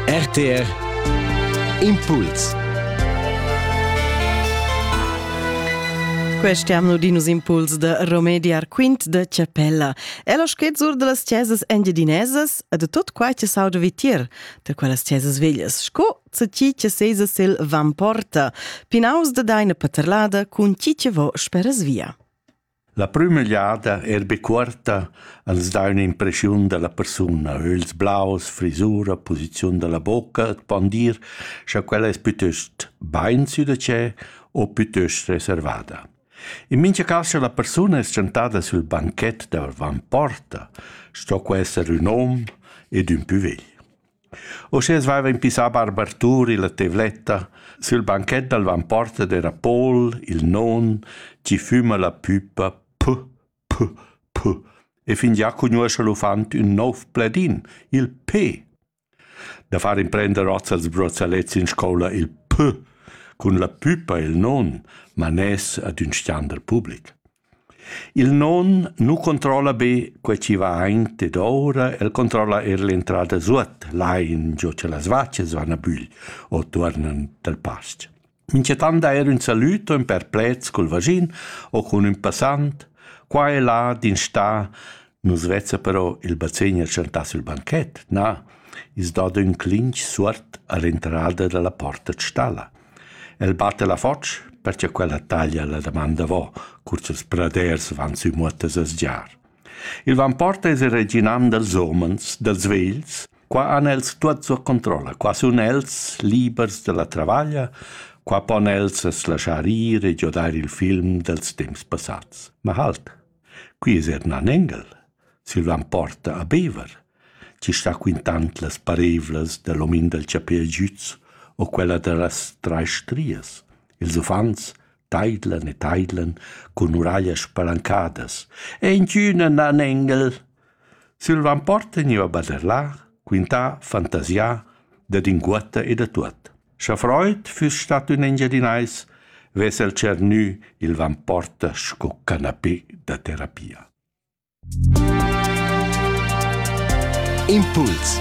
RTR Impuls Questi hanno dinus impuls da remediar quint da chapella. E lo schezzur de las chesas engiedinesas e de tot quai che sauda vitir, da quellas chesas veglias, sco se chi che sesa sil van porta, pinaus de deine paterlada cun chi che vo speras via. La prüma jada eir be cuorta als dà ün'impreschiun da la persuna, ögls blaus, frisura, posiziun da la bocca e pon dir scha quella es pütöst bain sü da tschè o pütöst reservada. In mincha cas scha la persuna es tschantada sül banchet davant porta, sto que esser ün hom ed ün pü vegl. Uschè as vaiva impissà Barbartur illa tevletta sül banchet dal vanporta d'eira Paul, il non, chi füma la püpa P, P, P e fingià cugnuoscha l'uffant ün nouv pledin, il P. Da far imprender hoz als brozzalets in scoula il P cun la püpa e il non, man es ad ün standard public. Il non nu controlla be quai chi vain dedouра, el controlla eir l'entrada suot, lain giò cha las vachas van a bügl o tuornan dal pas-ch. Minchatant eir ün salüd o ün perplet cul vaschin o cun ün passant. Qua e là d'instà Nus vezza però il bazegner tschantà sül banchet, na, i's dà d'ün clinch suot a l'entrada da la porta d'stalla. El batta la foch perche quella taglia la damanda vo, cur ch'ils praders van sü muottas a sgiar. Il vamporta es il reginam dals homens, dals vegls, qua han els tuot sua controlla, qua sun els libers dalla travaglia, qua pon els as laschar ir e giodair il film dels temps passats. Ma halt, Quei es eir ün anengel. Silvan porta a Bever, chi sta quintand las pareivlas da l'omin dal chapè giüz o quella da las trais strias. Ils uffants taidlan e taidlan cun uraglias palancadas. E inchün ün anengel! Sil ramport tegneva baderlar, quintar, fantasiar dad inguotta e da tuot. Scha Freud füss stat ün Engiadinais, vess el tschernü il Vamporta sco canapé da terapia. Impuls